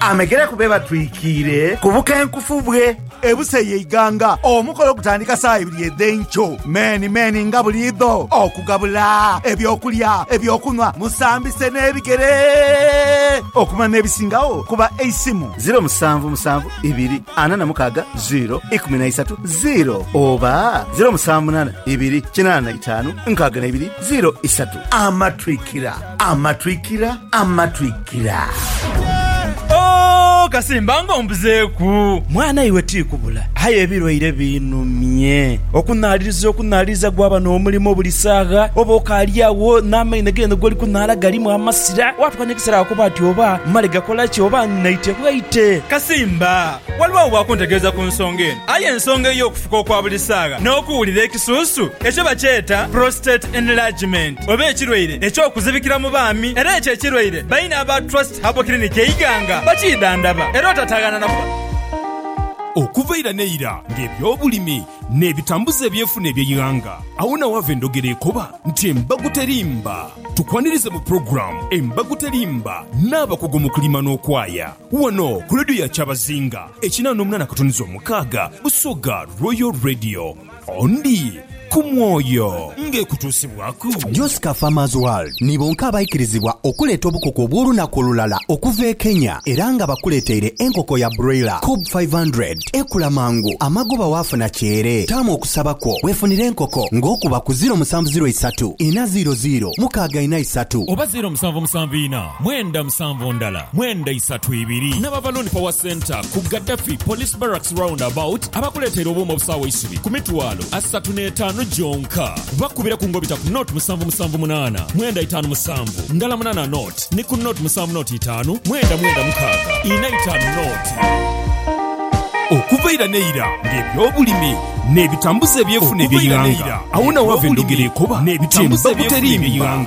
Amegere ku be batwikiire ku bukenkufu bwe. Ebusa ye Iganga. Omukolo gutandika saa ibiri edh'enkyo meeni meeni nga buliidho okugabula eby'okulya, eby'okunhwa, musambise n'ebigere okumala n'ebisingagho ku ba Eisimu. Ziro musanvu musanvu ibiri ana na mukaaga ziro ikumi na isatu ziro oba ziro musanvu munaana ibiri kinaana na itaanu nkaaga na ibiri ziro isatu. Amatwikira. Amatwikira, amatwikira. Ooh kasimba nga ombuzeeku. Mwana iwe tikubula aye ebilwaire binumye. Okunaaliriza okunaaliriza gwaba n'omulimo buli saagha, oba okaali agho n'amaino g'eno gw'oli kunaala galimu amasira, waatuka n'ekiseera wakoba ati oba mmale gakola ki oba nnaite bwaite. Kasimba, waliwo agho bwakuntegeeza ku nsonga eno aye ensonga ey'okufuka okwa buli saagha n'okuwulira ekisuusu ekyo bakyeta prostate enlargement. oba ekirwaire eky'okuzibikira mu baami era ekyo ekirwaire baine aba Trust Herbal Clinic e Iganga bakiidhandhaba era otataaghaana na kuba. Okuva ira n'eira ng'ebyobulimi n'ebitambuza ebyenfuna eby'eighanga, agho na waava endhogera ekoba nti embago terimba. Tukwanirize mu pulogulaamu Embago Terimba n'abakugu mu kulima n'okwaya wano ku leediyo ya Kyabazinga ekinaa n'omunaana akatuniza omukaaga, Busoga Royal Radio. Ondi ku mwoyo ng'ekutuusibwaku. Josca Farmers World ni bonka abaikirizibwa okuleeta obukoko obw'olunaku olulala okuva e Kenya era nga bakuleeteire enkoko ya broiler Kob five hundred. Ekula mangu, amagoba waafuna kyere. Taamu okusaba kwo weefunire enkoko ng'okuba ku ziiro musanvu ziiro isatu ina ziiro ziiro mukaaga ina isatu. Oba ziiro musanvu musanvu ina Mwenda musanvu ndala mwenda isatu ibiri n'Abavaloni Power Centre ku Gaddafi Police Barracks Round About abakuleteire obuuma obusaawa eisubi ku mitwalo asatu n'etaanu gyonka. Bakubire ku ngobita ku note musanvu musanvu munaana mwenda itaanu musanvu ndala munaana note ni ku note musanvu note itaanu mwenda mwenda mukaaga ina itaanu note. Okuva ira n'eira ng'ebyobulimi n'ebitambuza eby'enfuna eby'eighanga, agho na ghava endhogera ekoba nti embago teriimbibwa.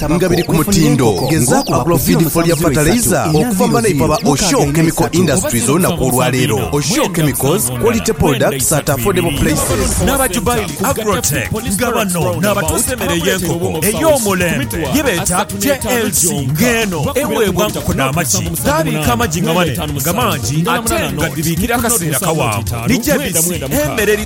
nga biri ku mutindo. Gezaaku okugula obufidiifo lya fataleiza okuva mu banaipa ba Oshoo Chemical Industries olunaku olwaleero. Oshoo Chemicals, quality products at affordable prices. N'aba Jubaili Agrotech nga bano n'abatuusa emere ey'enkoko ey'omulembe ye beeta JLC ng'eno eweebwa nkoko dha magi. Gaabiika amagi nga mane nga mangi ate nga dhibiikira akaseera kawanvu. Ni JBC emere eri.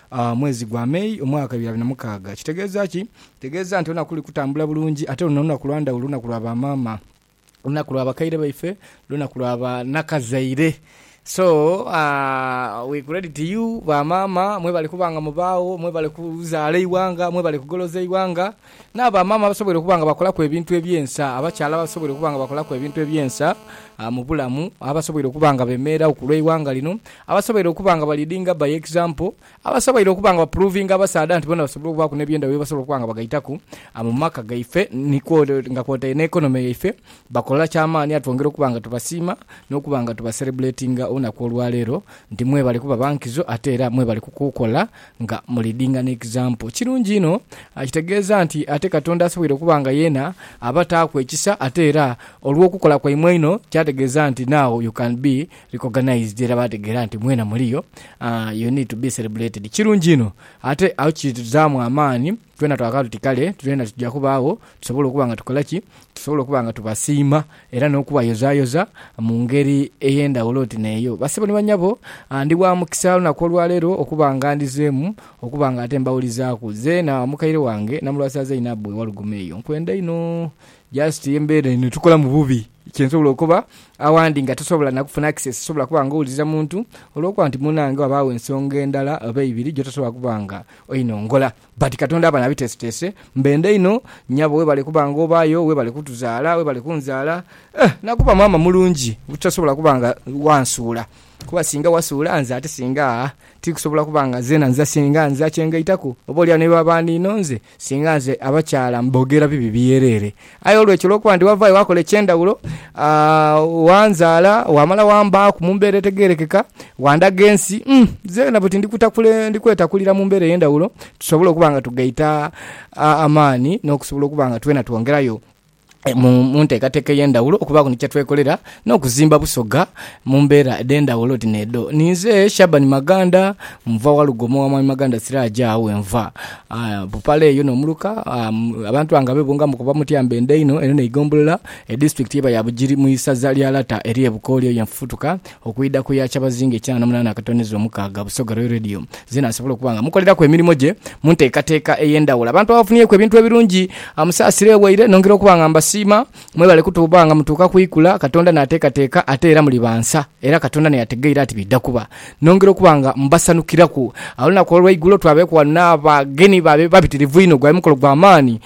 mwezi gwa May omwaka bibiri na mukaaga. Kitegeeza ki? Kitegeeza nti olunaku luli kutambula bulungi ate luno lunaku lwa ndhawulo, lunaku lwa ba maama, lunaku lwa bakaire baife, lunaku lwa ba nakazaire. So we credit you ba maama mwebale kuba nga mubaagho, mwebale kuzaala eighanga, mwebale kugoloza eighanga. N'abamaama abasoboire okuba nga bakolaku ebintu eby'ensa, abakyala abasoboire okuba nga bakolaku ebintu eby'ensa mu bulamu, abasoboire okuba nga beemererawo ku lw'eighanga lino, abasoboire okuba nga baliidinga by example, abasoboire okuba nga bapuruvinga abasaadha nti boona basobola okubaaku n'ebyendhaghulo bye basobola okuba nga bagaitaku mu maka gaife ni kwotaire nga kwotaire n'economy yaife, bakola kya maani ate twongera okuba nga tubasiima n'okuba nga tubaserebuletinga olunaku olwaleero nti mwebale kuba ba nkizo ate era mwebale kukola Nga mu leadinga ne example. Kirungi inho. Kitegeeza nti ate Katonda asoboire okuba nga yeena abataaku ekisa ate era olw'okukola kwaimwe einho kyategeeza nti now you can be recognized era baategeera nti mweena muliyo, you need to be celebrated. Kirungi inho ate agho kituzaamu amaani. Twena twagala tuti kale twena tuja kuba agho tusobole okuba nga tukola ki? Tusobole okuba nga tubasiima era n'okubayozayoza mu ngeri ey'endhaghulo oti n'eyo. Basebo ni banyabo, ndi wa mukisa olunaku olwaleero okuba nga ndhizeemu okuba nga ate mbawulizaaku. Zeena mukaire wange na mulwasiza Zainabu e Walugoma eyo, nkwenda inho. Just embeera eno etukolamu bubi, kye nsobola okoba. Awandi nga tosobola na kufuna access, tosobola kuba nga owuliriza muntu olw'okuba nti munnange ghabagho ensonga endala oba eibiri gy'otosobola kuba nga Oino ngola but katonda abana abitesetese mbenda inho nyabo webale kuba nga obayo webale kutuzala webale kunzala eeh nakuba maama mulungi butasobola kuba nga wansuula kuba singa wasuula nze ate singa aah tikusobola kuba nga zena nza singa nza kyengaitaku oba olyawo nebaba ninonze singa nze abakyala mbogera bibi byerere Aye olwekyo, olw'okuba ndi wavaayo waakola eky'endhawulo, wanzaala, waamala wambaaku mu mbeera etegeerekeka, wandaga ensi, nze na buti ndi kwetakulira mu mbeera ey'endhawulo tusobole okuba nga tugaita amaani n'okusobola okuba nga twena twongerayo mu nteekateeka ey'endhawulo okubaaku ni kye twekolera n'okuzimba Busoga mu mbeera edh'endhaghulo oti n'edho. Ninze Shaban Maganda, nva Walugo omu wa Mwami Maganda Siraje agho wenva. Bupale eyo n'omuluka abantu bange abebungamu okuva mu Tyambe Endaino eno n'eigombolola edisitulikiti eba ya Bugiri mu isaza lya Lata erye Bukooli eyo yenfufutuka okwidha ku ya Kyabazinga ekyana n'omunaana akatoneza omukaaga. Busoga Royal Radio zeena nsobola okuba nga mukoleraku emirimo gye mu nteekateeka ey'endhaghulo. Abantu abafunyeku ebintu ebirungi musaasira ewaire nongera okuba nga mbasiima. Mwebale kutuuba nga mutuuka ku ikula Katonda n'ateekateeka ate era muli ba nsa, era Katonda n'eyategeire ati bidha kuba. Nongera okuba nga mbasanukiraku. Olunaku olw'eigulo twabeeku ghano n'abagenyi baabe babitirivu inho. Gwali mukolo gwa maani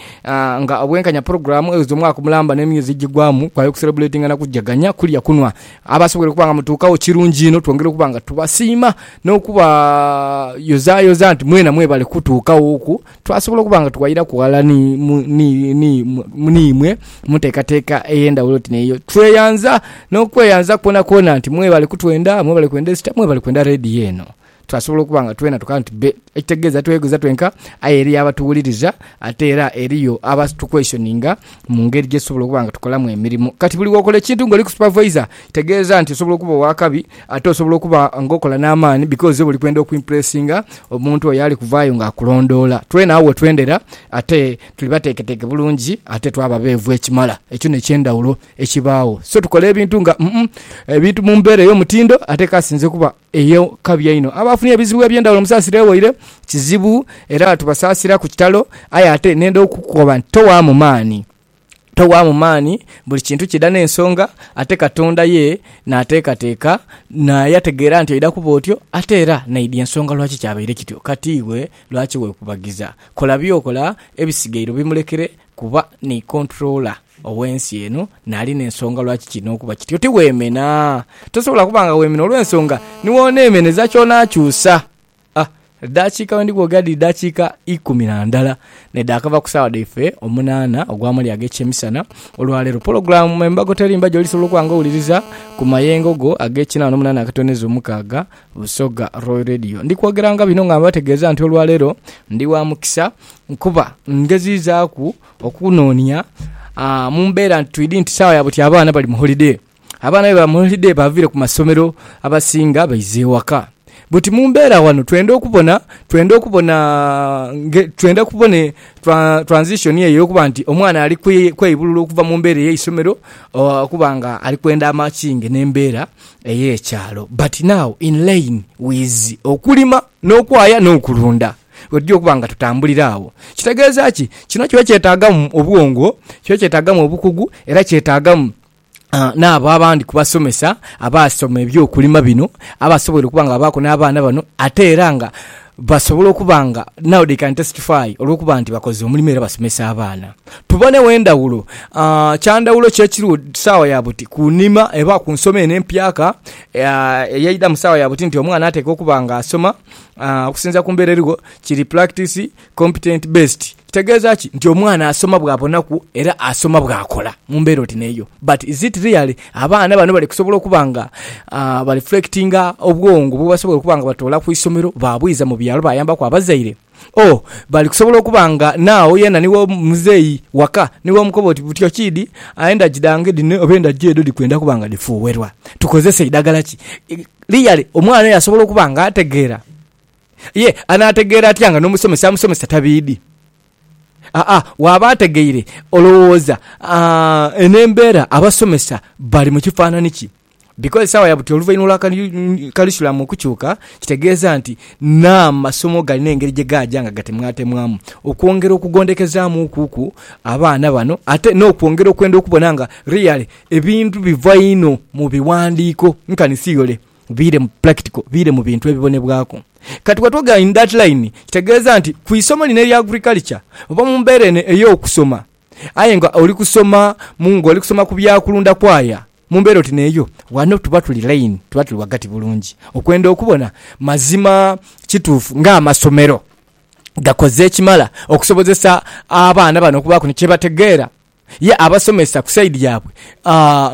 nga obwenkanya pulogulaamu eweeza omwaka mulamba n'emyezi egigwamu. Kwali kuserebuletinga na kujaganya, kulya, kunhwa. Abasobweire okuba nga mutuukagho kirungi inho, twongera okuba nga tubasiima n'okubayozaayoza nti mwena mwebale kutuukaghoku. Twasobola okuba nga tuwairaku ghala n'imwe mu nteekateeka ey'endhawulo oti n'eyo. Tweyanza n'okweyanza kwonakwona nti mwebale kutwenda, mwebale kwenda Easter, mwebale kwenda leediyo eno. Twasobola okuba nga twena tukaba nti bbe, ekitegeeza tweyogereza twenka aye eriyo abatuwuliriza ate era eriyo abatukweshoninga mu ngeri gye tusobola okuba nga tukolamu emirimo. Kati buli w'okola ekintu ng'oliku supavaisa, Kitegeeza nti osobola okuba ow'akabi ate osobola okuba ng'okola n'amaani because oba oli kwenda okwimpulesinga omuntu oyo ali kuvaayo ng'akulondoola. Twena agho we twendera ate tuli bateeketeeke bulungi ate twaba beevu ekimala. Ekyo n'eky'endhawulo ekibaagho. So tukola ebintu nga umm ebintu mu mbeera ey'omutindo ate k'asinze okuba ey'akabi einho. Abo abafunye ebizibu eby'endhawulo musaasira ewaire kizibu era tubasaasira ku kitalo aye ate nenda okukoba nti towaamu maani. Towaamu maani, buli kintu kidha n'ensonga. Ate Katonda ye naateekateeka, naye ategeera nti oidha kuba otyo, ate era naidhi ensonga lwaki kyabaire kityo. Kati iwe lwaki weekubagiza? Kola by'okola, ebisigaire obimulekere, kuba ni Controller ow'ensi eno, naali n'ensonga lwaki kiina okuba kityo. Tiweemena. Tosobola kuba nga weemena olw'ensonga ni w'oneemeneza ky'onaakyusa. A Edhakiika bwe ndhighoga dhiri dhakiika ikumi na ndala n'edhakava ku saawa dhaife omunaana ogw'amali ag'ekyemisana. Olwaleero pulogulaamu Me Mbago Terimba gy'olisobola okuba nga owuliriza ku mayengo go ag'ekina wano mu nhanha akatonezo mukaaga, Busoga Royal Radio. Ndi kwogeranga bino nga mbategeeza nti olwaleero ndi wa mukisa kuba ngeziizaaku okunoonia mu mbeera nti twidhi nti saawa ya buti abaana bali mu holidee. Abaana be bamuholideyi baviire ku masomero abasinga baiza ewaka. Buti mu mbeera ghano twenda okubona, twenda okubona, twenda kubona transition eyo ey'okuba nti omwana ali kweibulula okuva mu mbeera ey'eisomero okuba nga ali kwenda amakinge n'embeera ey'ekyalo. But now in line with okulima n'okwaya n'okulunda wetugya okuba nga tutambulira agho. Kitegeeza ki? Kino kiba kyetaagamu obwongo, kiba kyetaagamu obukugu era kyetaagamu. n'abo abandi ku basomesa abaasoma eby'okulima bino abasoboire okuba nga babaaku n'abaana bano ate era nga basobola okuba nga now they can testify olw'okuba nti bakoze omulimu era basomesa abaana. Tubonegho endhawulo. Kya ndhawulo ki ekiriwo saawa ya buti ku nhima oba ku nsoma eno empyaka eyaidha mu saawa ya buti nti omwana atekwa okuba nga asoma okusinziira ku mbeera eriwo kiri pulakitisi? Competent based kitegeeza ki? Nti omwana asoma bw'abonaku era asoma bw'akola mu mbeera oti n'eyo. But is it really abaana bano bali kusobola okuba nga ba reflectinga obwongo bwebasobola okuba nga batoola ku isomero baabwiza mu byalo baayambaku abazaire? Or bali kusobola okuba nga now yena ni w'omuzeeyi waka ni w'omukoba oti butyo kiidi endagi dhange dhino oba endagi edho dhikwenda kuba nga dhifuuwerwa, tukozese idagala ki? Really omwana oyo asobola okuba nga ategeera? Ye anaategeera atya nga n'omusomesa amusomesa tabiidhi? Aa, waaba ategeire, olowooza eno embeera abasomesa bali mu kifaanani ki? Bikoze saawa ya buti oluvainhuma lwa karisulamu okukyuka, kitegeeza nti n'amasomo galina engeri gye gaaja nga gatemwatemwamu okwongera okugondhekezaamu okuku abaana bano ate n'okwongera okwenda okubona nga really ebintu biva inho mu biwandiiko, nkani siyole. Biire mu practical, biire mu bintu ebibonebwaku. Kati what we got in that line kitegeeza nti ku isomo lino erya agriculture oba mu mbeera eno ey'okusoma aye nga oli kusoma mu nga oli kusoma ku bya kulunda kwaya mu mbeera oti n'eyo ghano tuba tuli line, tuba tuli ghagati bulungi okwenda okubona mazima kituufu ng'amasomero gakoze ekimala okusobozesa abaana bano okubaaku ni kye bategeera. Ye abasomesa ku side yabwe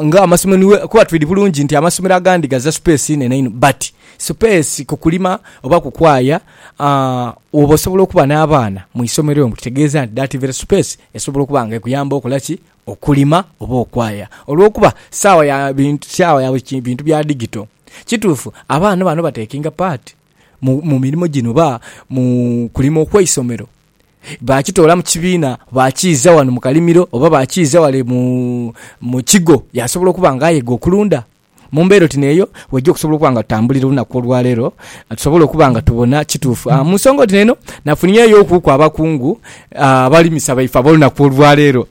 nga amasomero niwe kuba twidi bulungi nti amasomero agandi gaza space inene inho but space ku kulima oba ku kwaya woba osobola okuba na baana mwisomero omwo kitegeza nti that very space esobola okuba nga ekuyamba okola ki okulima oba okwaya olwokuba sawa ya bintu sawa ya bintu bya digito. Kitufu abaana bano ba takinga part mu mirimo gino oba mu kulima okweisomero baakitoola mu kibiina, baakiiza ghano mu kalimiro oba baakiiza ghale mu kigo yaasobola okuba nga ayega okulunda. Mu mbeera oti n'eyo, weija okusobola okuba nga tutambulira olunaku olwaleero, tusobole okuba nga tubona kituufu. Mu nsonga oti n'eno, nafunyeyokuku abakungu abalimisa baife ab'olunaku olwaleero.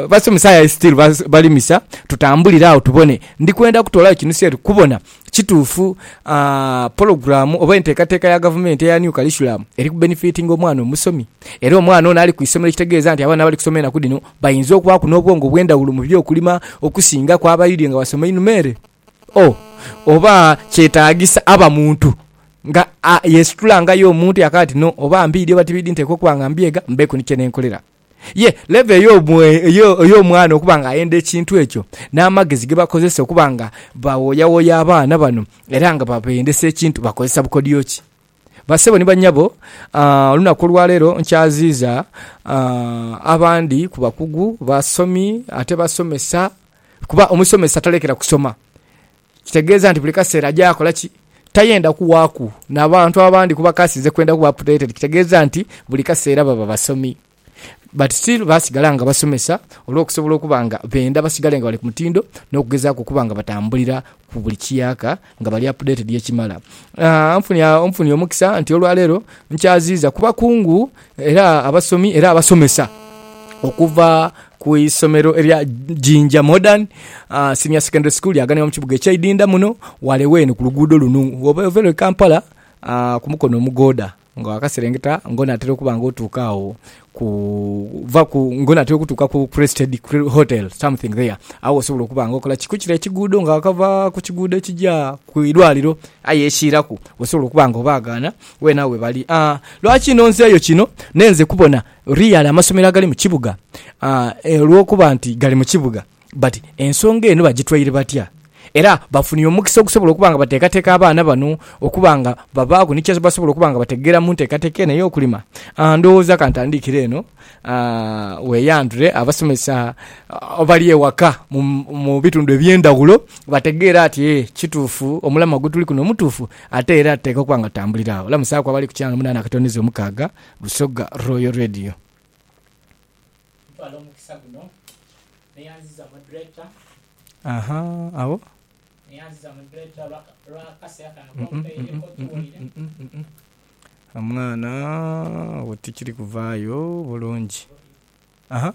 Basomesa aye sitiru balimisa, tutambulire agho tubone. Ndi kwenda kutoolayo kinusu eri kubona Kituufu pologulaamu oba enteekateeka ya gavumenti eya New Curriculum eri kubenifiitinga omwana omusomi. Era omwana ono ali ku isomero ekitegeeza nti abaana abali kusoma enaku dhino bainza okubaaku n'obwongo obw'endhawulo mu by'okulima okusingaku abaidhye nga basoma einhuma ere. O Oba kyetaagisa aba muntu nga yeesitula nga ye omuntu yakaati no oba mbiidhi oba tibiidhi nteekwa okuba nga mbyega mbeeku ni kye nenkolera. Ye leva ey'omwana okuba nga ayenda ekintu ekyo, n'amagezi ge bakozesa okuba nga bawoyawoya abaana bano era nga babendesa ekintu bakozesa bukodyo ki? Bassebo ni bannyabo, olunaku olwaleero nkyaziiza abandi ku bakugu, basomi ate basomesa kuba omusomesa talekera kusoma. Kitegeeza nti buli kaseera aja akola ki? Tayenda kuwaaku na bantu abandi kuba k'asinze kwenda kuba updated kitegeeza nti buli kaseera baba basomi. But still basigala nga basomesa olw'okusobola okuba nga benda basigale nga bali ku mutindo n'okugezaaku okuba nga batambulira ku buli kiyaaka nga bali updated ekimala. Nfunye omukisa nti olwaleero nkyaziiza ku bakungu Era abasomi era abasomesa okuva ku isomero erya Jinja Modern Senior Secondary School lyaganibwa mu kibuga ekya Idinda muno wale wene ku luguudo lunu woba oveire e Kampala ku mukono omugooda nga wakaserengeta nga onatera okuba nga otuuka agho ku vaku nga onatera okutuuka ku Crested Hotel something there agho wosobola okuba nga okola ki? Kukire ekiguudo nga wakava ku kiguudo ekigya ku irwaliro aye ekiiraku wosobola okuba nga obaagaana. Weena we bali. Lwaki nonzeeyo kino? Nenze kubona real amasomero agali mu kibuga olw'okuba nti gali mu kibuga. But ensonga eno bagitwaire batya? Era bafunire omukisa ogusobola okuba nga bateekateeka abaana bano okuba nga babaaku ni kye basobola okuba nga bategeera mu nteekateeka eno ey'okulima? Ndowooza ka ntandikire eno, weeyandhule abasomesa abali ewaka mu bitundu eby'endhaghulo bategeere ati ee kituufu omulamwa gwe tuli kuno mutuufu. Ate era teeka okuba nga tambulira agho. Lamusaaku abali ku channel munaana akatondezo omukaaga, Busoga Royal Radio. Ntwala omukisa guno neyanziza moderator. Aha agho. Neyanziza moderator olwa olwa akaseera kano kompaire kotuwaire. Omwana agho tikiri kuvaayo bulungi. Aha.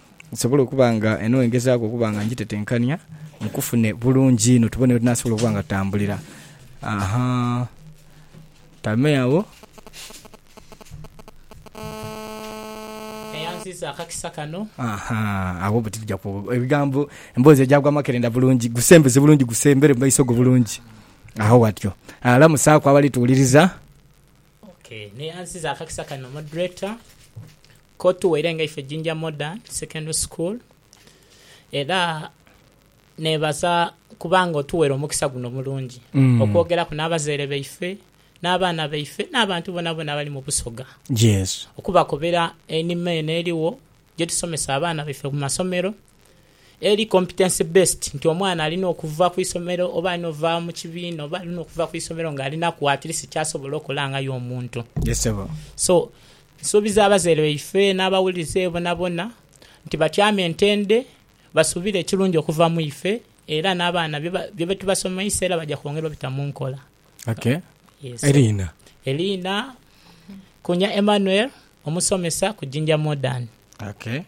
Nsobole okuba nga eno ngezaaku okuba nga ngitetenkania nkufune bulungi inho tubone wetunasobola okuba nga tutambulira. Ahaa. Tame agho. Eyansiisa akakisa kano. Ahaa. Agho buti tuja ku, ebigambo, emboozi egya gwa amakerenda bulungi. Gusembeze bulungi, gusembere mu maiso go bulungi. Agho watyo. Lamusaaku abali tuwuliriza. Okay. N'eyansiiza akakisa kano, Moderator, Ko tuwaire nga ife Jinja Modern Secondary School era nebaza kuba nga otuwaire omukisa guno omulungi okwogeraku n'abazaire baife, n'abaana baife n'abantu bonabona abali mu Busoga okubakobera einhima eno erigho gyetusomesa abaana baife mu masomero Eri competency based nti omwana alina okuva ku isomero oba alina ova mu kibiina oba alina okuva ku isomero nga alinaku at least kyasobola okola nga ye omuntu. Yes sebo. So nsuubiza abazaire baife n'abawulize bonabona nti batyame ntende basuubire ekirungi okuva mu ife era n'abaana bye byetubasomeisa era baja kwongera obita mu nkola. Okay. Yes sebo. Eriina? Eriina Kunya Emmanuel, omusomesa ku Jinja Modern. Okay.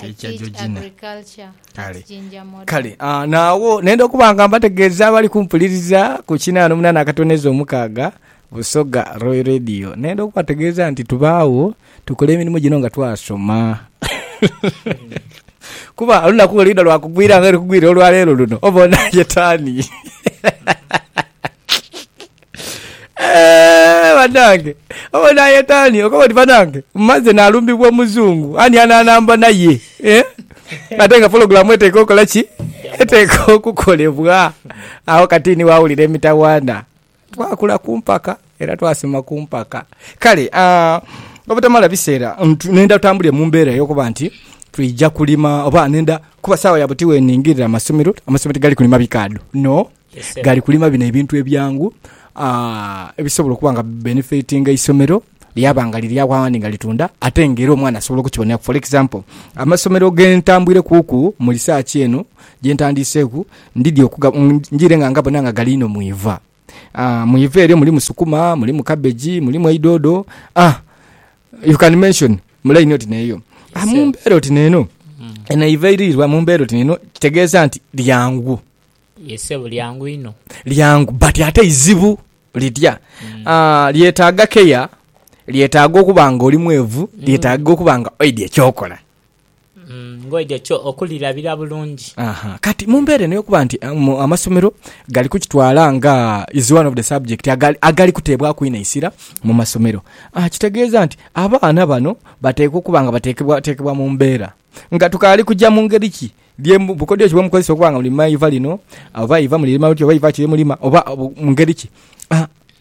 Teacher Georgina. Kale. Kale, ah, naawo nenda okuba nga mbategeeza abali kumpuliriza ku kinaana omunaana akatoneza omukaaga Busoga Royal Radio. Nenda okubategeeza nti tubaagho tukola emirimu gino nga twasoma. Kuba olunaku lwe lwidha lwa kugwira nga luli kugwira olwa leero luno, oba onaayeta ani? Eehh banange obo nayeta ani okoba oti banange maze nalumbibwa omuzungu ani ananamba naye eeh ate nga pulogulamu eteekwa okola ki eteekwa okukolebwa agho kati ni wawulira emitawaana. Twakula ku mpaka era twasoma ku mpaka kale aah obutamala biseera nendha tutambulire mu mbeera eyokuba nti twija kulima oba nendha kuba saawa ya buti weningirira amasomero, amasomero tigali kulima bikaadho no. Gali kulima bino ebintu ebyangu ebisobola okuba nga bibenefitinga eisomero lyaba nga liri agho aghandi nga litunda ate nga era omwana asobola okukiboneraku. For example, amasomero ge ntambwire kuuku mu research eno gye ntandiiseeku, ndidhi okuga, njiire nga ngabona nga gali inho mu iva. Mu iva eryo mulimu sukuma, mulimu cabbage, mulimu eidhoodho, you can mention mu line oti n'eyo. Mu mbeera oti n'eno, eno eiva eiriirwa mu mbeera oti n'eno kitegeeza nti lyangu. Ye ssebo lyangu inho. Lyangu but ate izibu litya? Aah lyetaaga care, lyetaaga okuba nga oli mwevu, lyetaaga okuba nga oidhi ekyokola. Nga oidhi ekyo, okulirabira bulungi. Aha, kati mu mbeera eno ey'okuba nti amasomero gali kukitwala nga is one of the subject agali agali kuteebwaku inho eisira mu masomero, kitegeeza nti abaana bano bateekwa okuba nga bateekebwateekebwa mu mbeera. Nga tukaali kuja mu ngeri ki ye bukodyo ki bwe mukozesa okuba nga mulima eiva lino, oba eiva mulirima muti, oba eiva ki lye mulima, oba mu ngeri ki.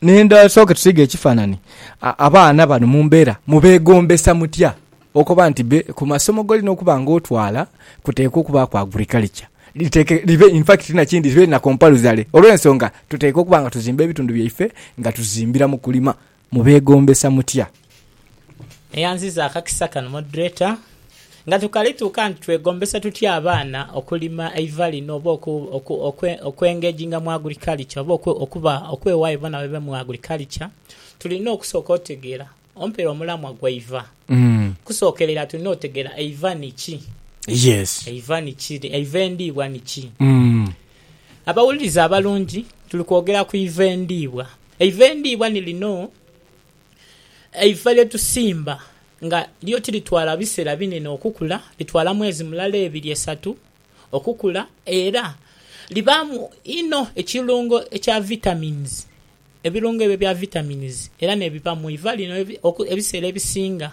Ndidha tusooke tusiige ekifaanani. Abaana bano mu mbeera mubeegombesa mutya? Okoba nti be ku masomo g'olina okuba nga otwala kuteekwa okubaaku agurikalica. Libe infakiti ti na kindi, libe na kompaluzale. Olw'ensonga tuteekwa okuba nga tuzimba ebitundu byaife nga tuzimbira mu kulima. Mubeegombesa mutya? Eyanziza akakisa kano moderator. Nga tukalituuka nti twegombesa tutya abaana okulima eiva lino oba okwengeginga mu agriculture oba okuba okwewaayo bona babe mu agriculture, tulina okusooka otegeera ompera omulamwa gweiva. Okusookerera tulina otegeera eiva ni ki? Eiva ni ki? Eiva endiibwa ni ki? Abawuliriza abalungi, tuli kwogera ku iva endiibwa. Eiva endiibwa ni lino, eiva lye tusimba nga lyo tiritwala biseera binene okukula, litwala mwezi mulala, ebiri, esatu okukula era libaamu inho ekirungo ekya vitamins, ebirungo ebyo ebya vitamins era n'ebiva mu iva lino ebiseera ebisinga.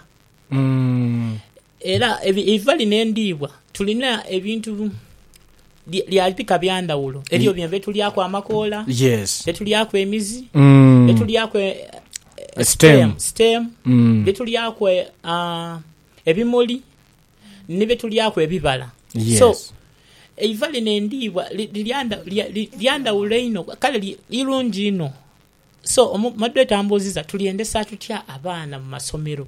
Era eiva lino endiibwa tulina ebintu lya bika bya ndhawulo. Eriyo bino bye tulyaku amakoola, bye tulyaku emizi, bye tulyaku stem, bye tulyaku ebimuli ni bye tulyaku ebibala. So eiva lino endiibwa lya ndhawulo inho kale irungi inho. So Moderator ambuuziza tulyendesa tutya abaana mu masomero?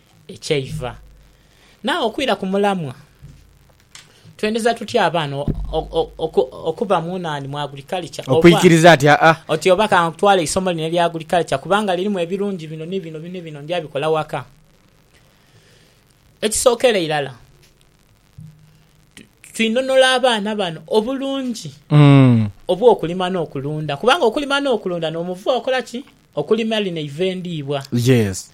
ekyeiva. Naagho okwira ku mulamwa, twendeza tutya abaana okuba mu nani, mu agriculture? Okwikiriza ati, Aa. Oti, Oba ka ntwale eisomo lino erya agriculture kubanga lirimu ebirungi bino ni bino ni bino, ndya bikola waka. Ekisookera irala, twinonora abaana bano obulungi obw'okulima n'okulunda kubanga okulima n'okulunda n'omuvuo okola ki? Okulima lino eiva endiibwa. Yes.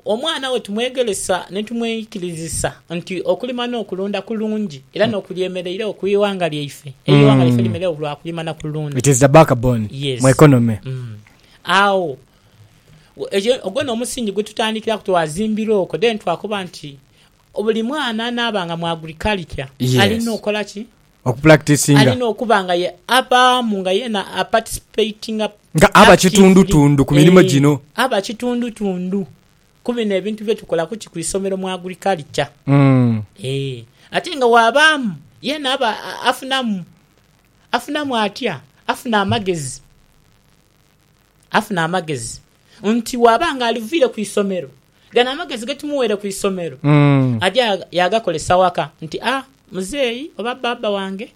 Omwana we tumwegeresa ni tumweikirizisa nti okulima n'okulunda kulungi era n'okulya emereireo ku ighanga lyaife. Eighanga lyaife limereireo lwa kulima na kulunda. Yes. Agho, ekyo, ogwo n'omusingi gwe tutandikiraku twazimbira okwo then twakoba nti buli mwana anaaba nga mu agriculture alina okola ki? Alina okuba nga ye abaamu nga yeena aparticipatinga actively. Nga aba kitundutundu ku mirimo gino. Ee, aba kitundutundu ku bino ebintu bye tukola kuti ku isomero mu agriculture. Ee, ate nga bw'abaamu yeena aba afunamu. Afunamu atya? Afuna amagezi. Afuna amagezi. nti bw'aba nga aliviire ku isomero, gano amagezi ge tumuweire ku isomero aja yaagakolesa waka nti, A, muzeeyi oba bbaabba wange,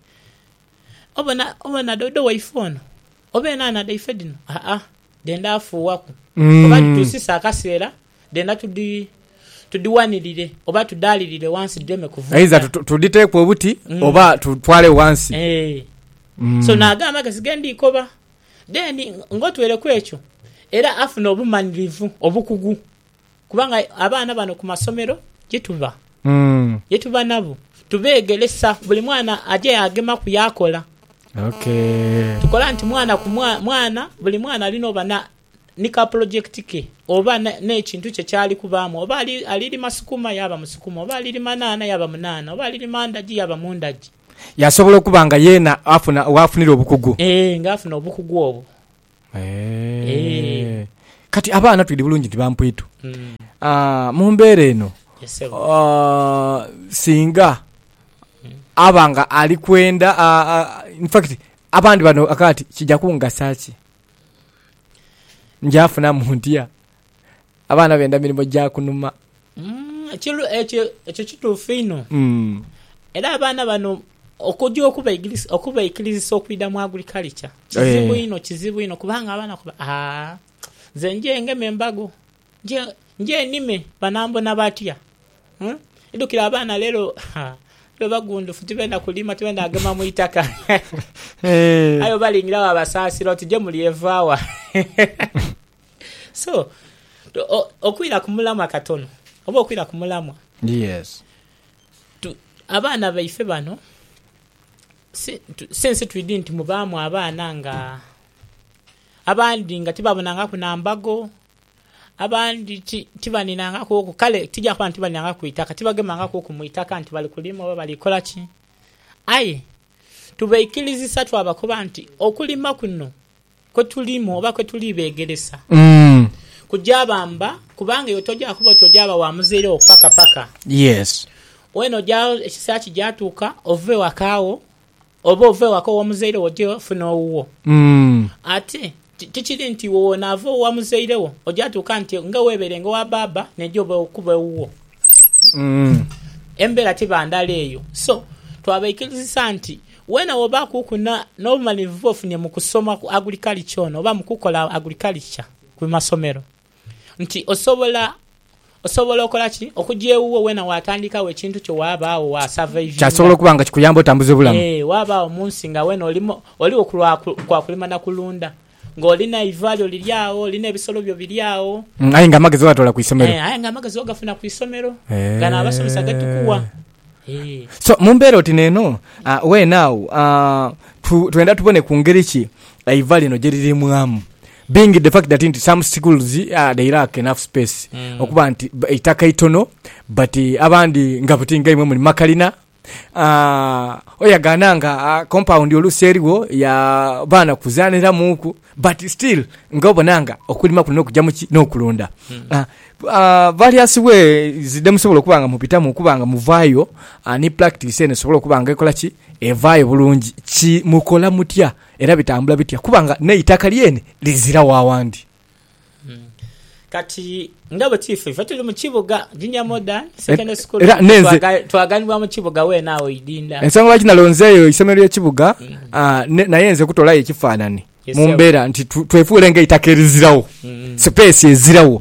obona, obona doodo waife ono, oba enhanha dhaife dhino, aa, dhenda afuuwaku, oba dhituusisa akaseera dhenda tudhi, tudhiwanirire oba tudhaalirire ghansi dhireme kuvunda. Aidha tudhiteeku obuti oba tutwale ghansi. Eeh. So, n'ago amagezi ge ndhi koba Then ng'otwere ku ekyo, era afuna obumanirivu obukugu kubanga abaana bano ku masomero ye tuba, ye tuba nabo, tubeegeresa. Buli mwana aja yaagemaku yaakola. Tukola nti mwana ku mwana, buli mwana ali n'oba ni ka pulojekiti ke oba n'ekintu kye ky'ali kubaamu. Oba ali lima sukuma yaaba mu sukuma, oba ali lima nhanha yaaba mu nhanha, oba ali lima ndagi yaaba mu ndagi. Yasobola okuba nga yeena afuna waafunira obukugu. Ee, ng'afuna obukugu obwo. Ee. Kati abaana twidhi bulungi nti bampwitu. Mu mbeera eno, singa aba nga ali kwenda, in fact abandi bano akaati kija kungasa ki? Nja funamu ntya Abaana benda mirimo gya kunuma. Ekyo kituufu inho. Era abaana bano okugya okubaikirizisa okwidha mu agriculture kizibu inho, kizibu inho kubanga abaana bakoba aa nze nje ngeme embago, nje nime banambona batya? Idhukira abaana leero bagundufu tibenda kulima, tibenda kugema mu itaka aye obalingiragho abasaasira oti je muli evaawa? So, o, okwira ku mulamwa katono, oba okwira ku mulamwa. Yes. Tu, abaana baife bano, si, tu, si nsi twidhi nti mubaamu abaana nga, abandi nga tibabonangaku na mbago, abandi ti, tibaninangaku oku, kale tija kuba nti tibaninangaku ku itaka, tibagemangaku oku mu itaka nti bali kulima oba bali kola ki. Aye tubaikirizisa twabakoba nti okulima kuno. Kwe tulimu oba kwe tuli beegeresa kuja bamba kubanga iwe toja kuba oti oja ba wa muzaire wo paka paka. Wena oja ekiseera kija tuuka ove waka wo oba ove waka ow'omuzaire wo oje ofune owuwo. Ate tikiri nti iwe wonaava owa muzaire wo, oja tuuka nti nga weebeerenga owa baaba neija obe okuba ewuwo. Embeera tiba ndala eyo. So twabaikirizisa nti Weena w'oba kuuku n'obumalirivu bw'ofunye mu kusoma ku agurikalicha ono oba mu kukola agurikalicha ku masomero nti osobola osobola okola ki? Okugya ewuwo weena waatandikawo ekintu kyo waaba agho waasavaivinga. Kyasobola okuba nga kikuyamba otambuze bulamu. Yee, waaba agho mu nsi nga weena oligho ku lwa kwa kulima na kulunda. Nga oli neiva lyo liri agho, oli n'ebisolo byo biri agho. Aye nga amagezi ogatoola ku isomero. Aye nga amagezi ogafuna ku isomero. Gano abasomesa ge tukuwa. So, mu mbeera oti n'eno, weene agho twenda tubone ku ngeri ki eiva lino gye liriimwamu, being the fact that nti some schools they lack enough space, okuba nti eitaka itono but abandi nga buti nga imwe muli mu makalina. oyagana nga compound oluusi erigho ya baana kuzaniramuuku but still nga obona nga okulima kuno nokuja muki nokulunda various ways dhemusobola okuba nga mubitamu okuba nga muvayo ni practice eno esobole okuba nga ekola ki evayo bulungi ki mukola mutya era bitambula bitya kuba nga neitaka lyene liziragho awandi. Kati nga bwe kiifa ife tuli mu kibuga junior modern secondary school era nenze twaganibwa mu kibuga wena awo idinda ensonga lwaki nalonzeeyo isomero ly'ekibuga mm. ah, naye nze kutolayo ekifaanani mu mbeera nti twefuule nga eitaka erizirawo mm. sipeesi ezirawo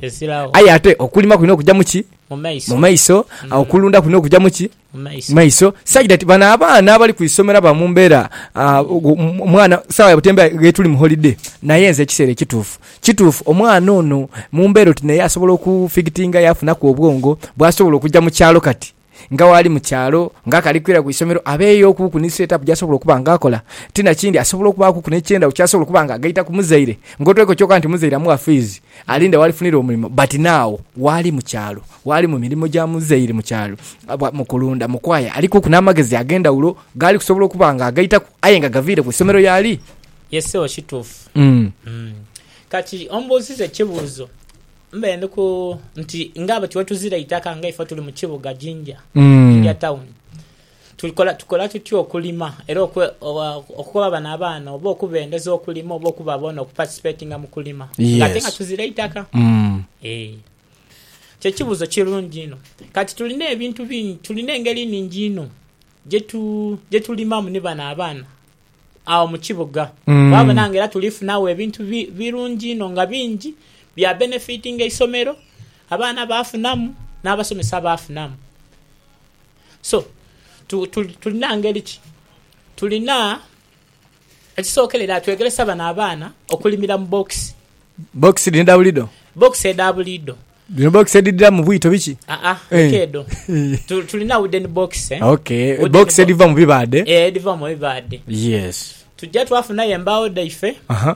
aye ate okulima kulina okujja muki mu maiso mm. okulunda kulina okujja muki mu maiso saidi ati bano abaana abali ku isomero aba mu mbeera omwana sawa ya butembeeyi ghetuli mu holiday naye nze ekiseera ekituufu kituufu omwana ono mu mbeera oti naye asobola okufigitinga yafunaku obwongo bwasobola okuja mu kyalo kati nga waali mu kyalo nga akali kwira ku isomero abeeyo okuuku ni set up gyasobola okuba nga akola ti nakindi asobola okubaakuku n'ekyendagho kyasobola okuba nga agaita ku muzaire ng'otoireku kyoka nti muzaire amuwa fiizi Alinde walifunira omulimo but now waali mukyalo waali mumirimo gya muzeeiri mukyalo mukulunda mukwaya alikuku namagezi agendawulo gaali kusobola okuba nga agaitaku aye nga gaviire ku isomero yaali Yes sebo kituufu kati ombuuziza ekibuuzo mbe ndi ku nti nga bwetuzira eitaka nga ife tuli mukibuga Jinja Jinja town Tukola tukola tutya okulima era okwe okukoba bano abaana oba okubendeza okulima oba okuba bona okuparticipatinga mu kulima nga ate nga Yes. tuzira itaka? Mm. Eeh kye kibuzo kirungi inho kati tulina ebintu bingi tulina engeri nhingi inho gyetu gyetulimamu ni bano abaana agho mu kibuga Mm. wabona nga era tuli funagho ebintu bi birungi inho nga bingi bya benefitinga eisomero abaana bafunamu n'abasomesa bafunamu. So, tulina ngeri ki? Tulina, ekisookerera twegeresa bano abaana okulimira mu bookisi. Bookisi dhino edha buliidho? Bookisi edha buliidho. Dhino bookisi edhidhira mu bwito biki? Aa, leka edho. Tulina wooden bookisi. Eh? Ok, bookisi edhiva mu bibaadhe? Ee, edhiva mu bibaadhe. Yes. Tujja twafunayo embaawo dhaife. Aha.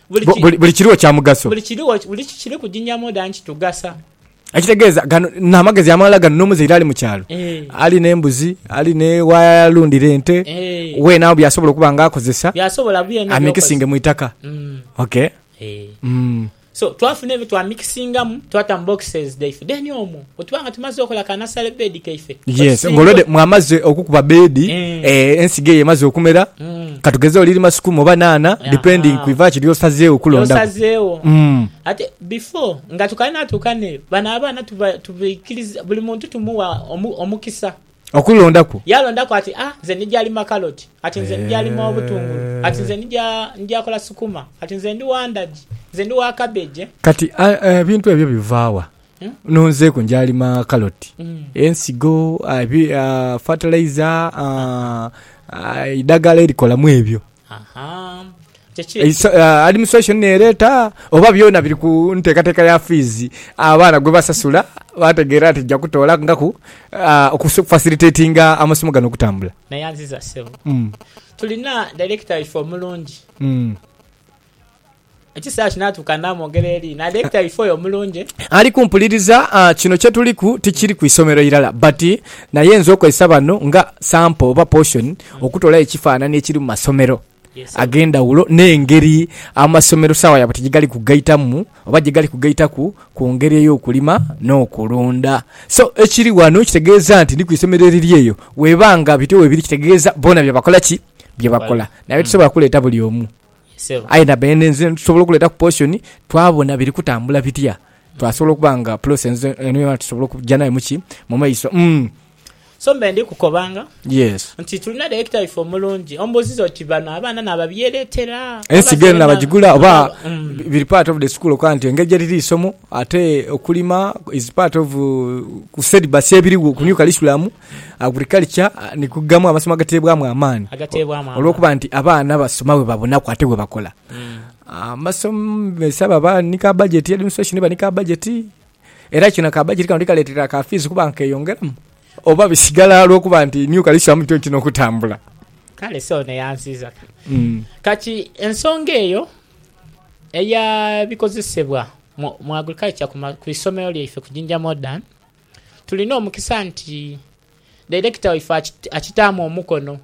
Buli kiriwo kya mugaso. Buli kiriwo, buli kiri kuginyamu oda nti tugasa. Ekitegeeza gano n'amagezi amalala gano n'omuzaire ali mu kyalo Eh. ali n'embuzi, ali ne w'alundira ente, Eh. weena agho by'asobola okuba nga akozesa Byasobola byona ebyokozesa. amikisinge mu itaka. Mm. Ok. Eh. Mm. So twafuna ebyo twamikisingamu twata mu boxes dhaife then omwo Bwe tuba nga tumaze okola ka nasale beedi kaife, Yes, nga olwedho mwamaze okukuba beedi, eeh, ensigo eyo emaze okumera, ka tugeze oli lima sukuma oba naana, depending ku iva ki ly'osazeegho okulondaku. Ly'osazeegho. Ate before nga tukanatuuka n'eyo, bano abaana tuba, tubaikiriza, buli muntu tumuwa omu, omukisa. Okulondaku. Yalondaku ati, Ah, nze ndija lima kaloti, ati nze ndija lima obutungulu, ati nze ndija, ndija kola sukuma, ati nze ndi wa ndagi, nze ndi wa cabbage. Kati, a, ebintu ebyo biva wa? Nhunzeeku nja lima kaloti, ensigo, fatalaiza, eidhagala erikolamu ebyo. Administration n'ereeta oba byona biri ku nteekateeka ya fiizi abaana gwe basasula baategeera nti nja kutoolangaku okufasilitetinga amasomo gano okutambula? Nayanziza ssebo. Tulina dayirekita waife omulungi. Ekiseera kinaatuuka naamwogera eri, naadheekita ife oyo omulungi. Ali kumpuliriza. Kino kye tuliku tikiri ku isomero irala, but naye nze okozesa bano nga sample oba portion okutolayo ekifaananhi ekiri mu masomero ag'endhawulo n'engeri amasomero sawa yaabwe tegigali kugaitamu oba gyegali kugaitaku ku ngeri ey'okulima n'okulunda. So ekiri wano kitegeeza nti ndi ku isomero eriri eyo. Weeba nga bityo weebiri kitegeeza boona bye bakola ki? Bye bakola. Naye tisobola kuleeta buli omu. Sebo. Aidha beene nze ntusobola okuleetaku portion twabona biri kutambula bitya, twasobola okuba nga process eno yoona tusobola okugya nayo mu ki? Mu maiso. Umm. So mbe ndi kukobanga. Yes. Nti tulina director waife omulungi. Ombuuziza oti bano abaana naababyereetera? Ensigo eno naabagigula oba biri part of the school okukoba nti engeri gyeriri eisomo ate okulima is part of ku syllabus ebiriwo ku new curriculum? Agriculture ni ku gamu amasomo agateebwamu amaani olw'okuba nti abaana basoma bwe babonaku ate bwe bakola. Abasomesa baba ni ka bajeti, administration eba ni ka bajeti era kino ka bajeti kano tikaleetera ka fiizi kuba nkeyongeramu oba bisigala olw'okuba nti new curriculum nti ntino okutambula. Kale se ono yansiiza ka. Kati ensonga eyo eya bikozesebwa mu agriculture ku isomero lyaife ku Jinja Modern, Tulina omukisa nti Dairekita waife akitaamu omukono.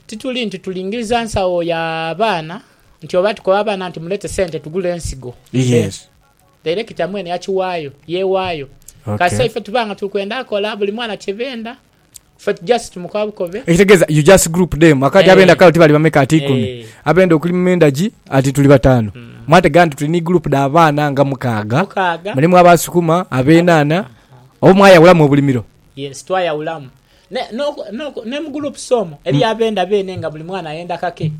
Tituli nti tulingiriza nsawo ya baana nti oba tukoba abaana nti muleete sente tugule ensigo ffe. Dairekita mwene yakiwaayo, yeewaayo kasita ife tuba nga tuli kwenda kola buli mwana kye benda. Fate just mukabukobe. Ekitegeza you just group them akati abenda kale oti bali bameka ati ikumi abenda okuli mumendagi ati tuli batanu mwatega nti tuli ni group da baana nga mukaaga mulimu aba sukuma abenana oba mwayawulamu obulimiro. Yes twayawulamu ne no no ne mu groups omwo eliyo abenda bene nga buli mwana ayenda kake.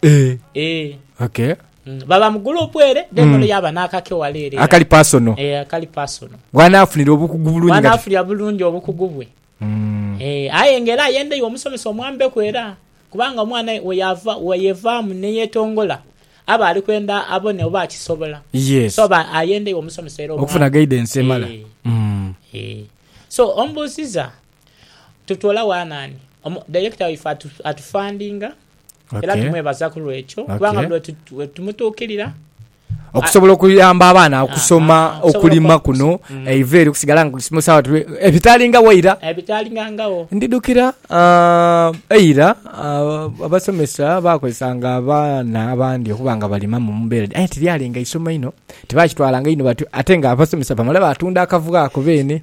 Eh, Eh, okay. mm, baba mu gurupu ere then Mm. oluyo aba n'akake wala ere Akali personal. Eh, akali personal Bw'anaafunira obukugu bulungi nga... bwanaafulira bulungi obukugu bwe Mm. Eh, aye nga era ayenda iwe omusomesa omwambeku era kubanga omwana weyava weyevaamu neyetongola aba ali kwenda abone oba akisobola Yes. so ba ayenda iwe omusomesa era omwambe. Okufuna guidance emala. Eh. Mm. Eh. so omubuuziza tutwola wanaani Omu- director waife atu- atufandinga era tumwebaza ku lwekyo kubanga bwe tumutuukirira okusobola okuyamba abaana ah, okusoma ah, ah, okulima kuno mm. eiva eri okusigala nga kusimusawa tube ebitalingawo eira ebitalingangawo ndidukira eira abasomesa bakozesanga abaana abandi okuba nga balima mu mbeera aye tiryalinga isomo ino tibakitwalanga ino ate nga abasomesa bamala batunda akavuga ako beene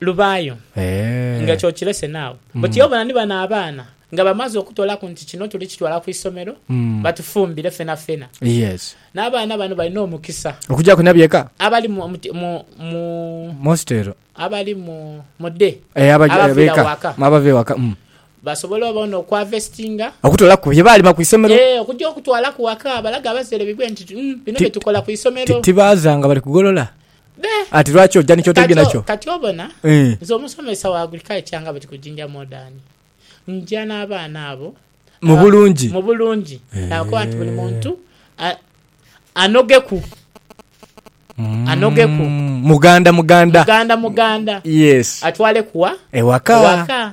Lubaayo nga ky'okirese naawe. Buti obona ni bano abaana nga bamaze okutoolaku nti kino tuli kitwala ku isomero batufumbire fenafena. N'abaana bano balina omukisa. Okugyaku na byeka. Abali mu, mu, mu, abali mu, mu day, abaviira waka, abava ewaka, basobole obona okuhavestinga, okutoolaku bye baalima ku isomero. Eeh, okugya okutwalaku waka, balage abazaire baibwe nti, Bino bye tukola ku isomero. Tibaaza nga bali kugolola. Ati lwaki oja ni kyotaidhi nakyo? Kati obona, nze omusomesa wa agriculture nga bwetu ku Jinja Modern, nja n'abaana abo mu bulungi, mu bulungi nabakoba nti buli muntu anogeku, anogeku, muganda muganda, muganda muganda, yes, atwaleku wa? Ewaka, ewaka.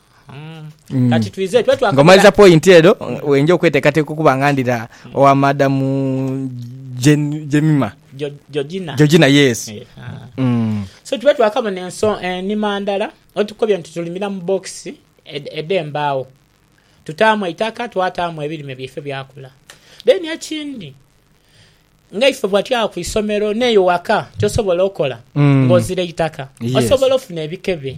Mm. kati twize twe twakabira- Ng'omaliza point edho wenja okweteekateeka okuba nga ndira owa Madam Jen- Jemima. Jo- Georgina. Georgina, yes. Eh, ah. Mm. so tube twakabona enso enima ndala otukobye nti tulimira mu bokisi ed- edh'embaawo tutaamu eitaka twataamu ebirime byaife byakula then ekindi nga ife bwatya ku isomero n'eyo waka kyosobola okola Mm. ng'ozira eitaka Yes. osobola ofuna ebikebe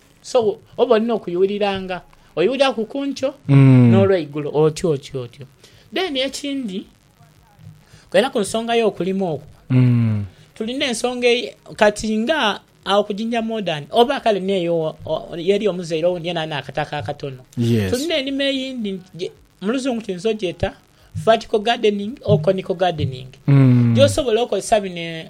So oba olina okuyuwuliranga, oyuwuliraku ku nkyo n'olweigulo, otyo otyo otyo. Then ekindi, kwena ku nsonga y'okulima okwo, tulina ensonga eye, kati nga agho ku Jinja Modern, oba kale n'eyo ey'eri omuzaire owundi yena ali n'akataka akatono, tulina enima eyindi nti, mu luzungu tuyinza ogyeta vertical gardening or conical gardening, gy'osobola okozesa bino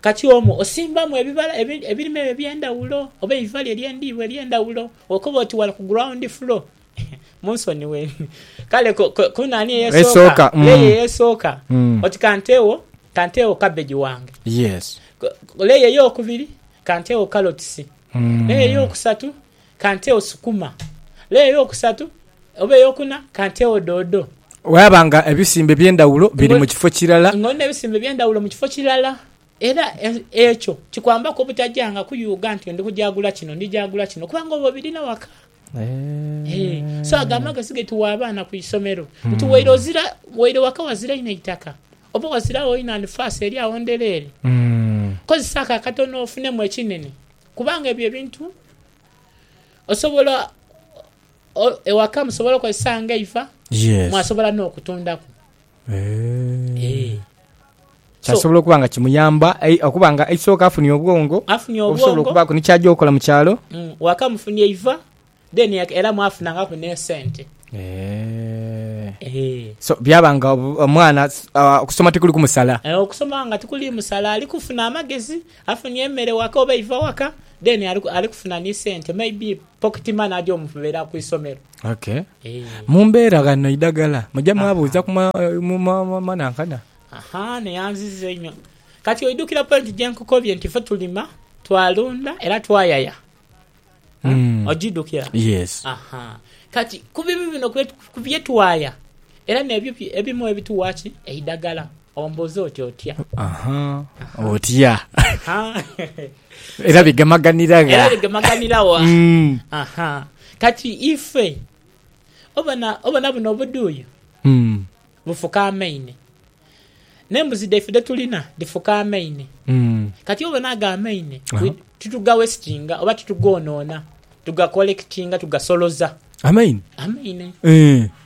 Kati omwo osimbamu ebibala ebirime ebyo eby'endhawulo oba eiva lyo ery'endiibwa ery'endhawulo, okoba oti wala ku ground floor. Munsonighe. Kale ku nani ey'esooka? Leya ey'esooka. Oti kanteegho, kanteegho cabbage wange. Leya ey'okubiri, kanteegho carrots. Leya ey'okusatu, kantewo sukuma. Layer ey'okusatu oba ey'okuna kantewo doodo. Bwaba nga ebisimba eby'endhawulo biri mu kifo kirala. Nga olina ebisimba eby'endhawulo mu kifo kirala. Era ekyo kikwambaku obutagyanga kuyuuga nti ndi kugya gula kino, ndi gya gula kino kubanga oba obirina waka. So ago amagezi ge tuwa abaana ku isomero nti waire ozira, waire waka wazira inho eitaka oba wazira agho inho anifaasi eri agho ndhereere, kozesa ako akatono ofunemu ekinene. Kubanga ebyo ebintu osobola ewaka musobola okozesa nga eiva, mwasobola n'okutundaku. Kyasobola okuba nga kimuyamba okuba nga eisooka afunye obwongo obusobola okubaaku ni ky'aja okola mu kyalo. Waka mufunye eiva. Then era mwafunangaku n'esente. Eeh. So byaba nga omwana okusoma tikuli kumusala? Eeh okusoma nga tikuli musala, ali kufuna amagezi, afunye emere waka oba eiva waka then ali kufuna ni sente maybe pocket money aja omubera ku isomero. Okay. Eeh. Mu mbeera ghano eidhagala muja mwabuuza ku manankana? Ahaa neyanziza inho. Kati oidhukira point gyenkukobye nti ife tulima, twalunda era twayaya. Mm. Ogidhukira? Yes. Aha. Kati ku bibi bino kwe- ku bye twaya era n'ebyo bye- ebimu ebituwa ki eidagala ombuuza oti otya? Aha. Otya. Ha. Era bigemaganira gha. era bigemaganira wa? Mm. Aha. Kati ife obona obona buno obuduuyo Mm. Lufukaamaine. N'embuzi dhaife dhe tulina dhifukaamaine. Kati obona ago amaine titugaweesitinga oba titugoonona, tugakolekitinga, tugasoloza. Amaine? Amaine.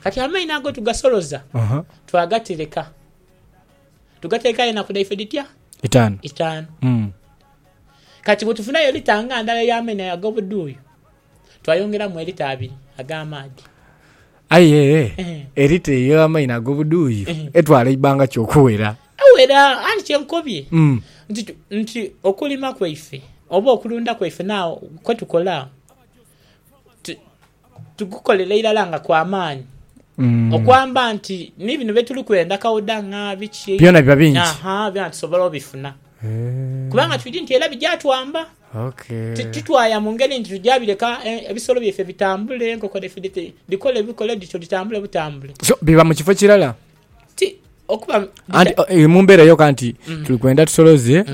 Kati amaine ago tugasoloza, twagatereka, tugatereka aye enaku dhaife dhitya? Itaanu. Itaanu. Kati bwe tufunayo lita nga ndala ey'amaine ago ag'obudhuuyu. Twayongeramu elita abiri ag'amaadhi. Aye elita eyo ey'amaino ag'obudhuuyu etwala eibanga ki okuwera? Ewera, anti kye nkobye nti okulima kwaife oba okulunda kwaife nawo kwe tukola tugukolera irala nga kwa maani okwamba nti ni bino bye tuli kwenda kauda nga biki, byona biba bingi, aha, byona tusobola obifuna kubanga twidhi nti era bija twamba. Titwaya mu ngeri nti tuja bireka ebisolo byaife bitambule, enkoko dhaife dhikole bikole dhityo, dhitambule butambule. So, biba mu kifo kirala? Ti, okuba. Anti eri mu mbeera yoka nti tuli kwenda tusoloze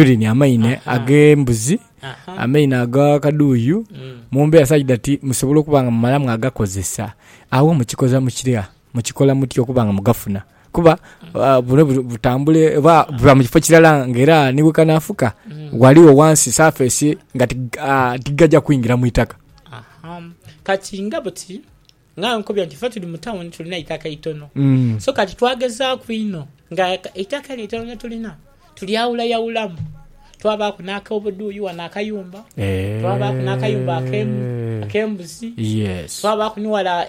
urine, amaino ag'embuzi, amaino aga kaduuyu, mu mbeera such that musobole okuba nga mumalamu agakozesa. Agho mukikoza mukira? Mukikola mutya okuba nga mugafuna? Kuba buno butambule oba buba mu kifo kirala nga era ni we kanaafuka ghaligho wansi safeesi nga tigaja kwingira mu itaka. Kati nga buti nga nkubye nti fe tuli mu tawuni tulina eitaka eitono so kati twagezaaku inho nga eitaka lino eitono lye tulina tulyawulayawulamu twabaaku n'ak'obudhuuyi ghano akayumba, twabaaku n'akayumba ak'embuzi, twabaaku ni wala...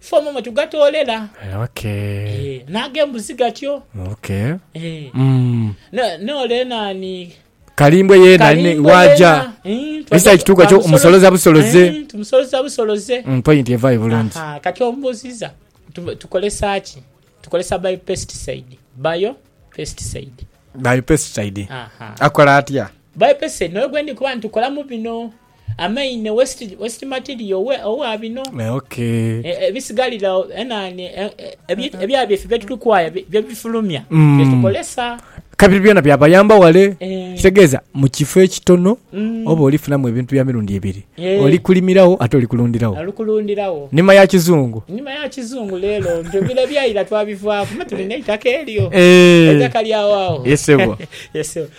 Ffe omwo mwe tugatoolela. Ok. Eeh. N'agembuzi gatyo. Ok. Eeh. Umm. Ne, n'ole nani? Kalimbwe yeena, Kalimbwe waaja. yeena. Eeh, twaja Ekisa ekituuka twa ekyo musoloza busoloze. Eeh, tumusoloza busoloze. Mm, point evaayo bulungi. Ahaa, kati ombuuziza, tu, tukolesa ki? Tukolesa biopesticide. Biopesticide. Biopesticide. Ahaa. Akola atya? Biopesticide n'oyo gwendi kuba nti tukolamu bino. Amaine waste material owa bino ebisigaliragho enani ebya byaife bye tuli kwaya bye bifulumya bye tukozesa kabiri byona bya bayamba wale ekitegeeza mu kifo ekitono oba oli funamu ebintu bya mirundi ebiri oli kulimiragho ate oli kulundhiragho nima ya kizungu nima ya kizungu lero nti bino ebyaira twa bivaku me tulina eitaka eryo eitaka lya wao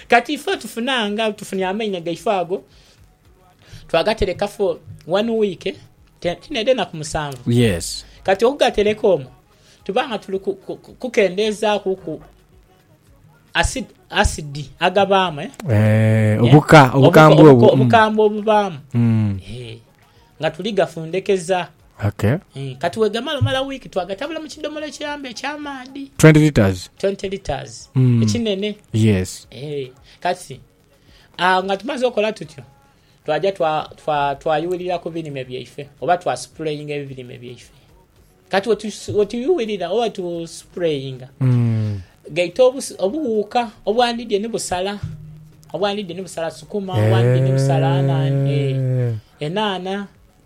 kati ife tufunanga tufunire amaine gaife ago. twagaterekafu wani wiiki tidha enaku musanvu. Kati okugatereka omwo tuba nga tuli kukendeezaakuku asidi agabaamu, eh, obukambwe obubaamu mm. eh, nga tuli gafundekeza. Mm, kati wegamala omala wiiki twagatabula mu kidomola ekiyamba ekyamaadhi mm. ekinene. Eh, kati Agho nga tumaze okola tutyo, twaja twayughirira ku birime byaife oba twasupureyinga ebirime byaife. Kati wetuyughirira oba wetusupureyinga, gaita obughuka obwandidye ni busala, obwandidye ni busala sukuma, obwandidye ni busala enhanha.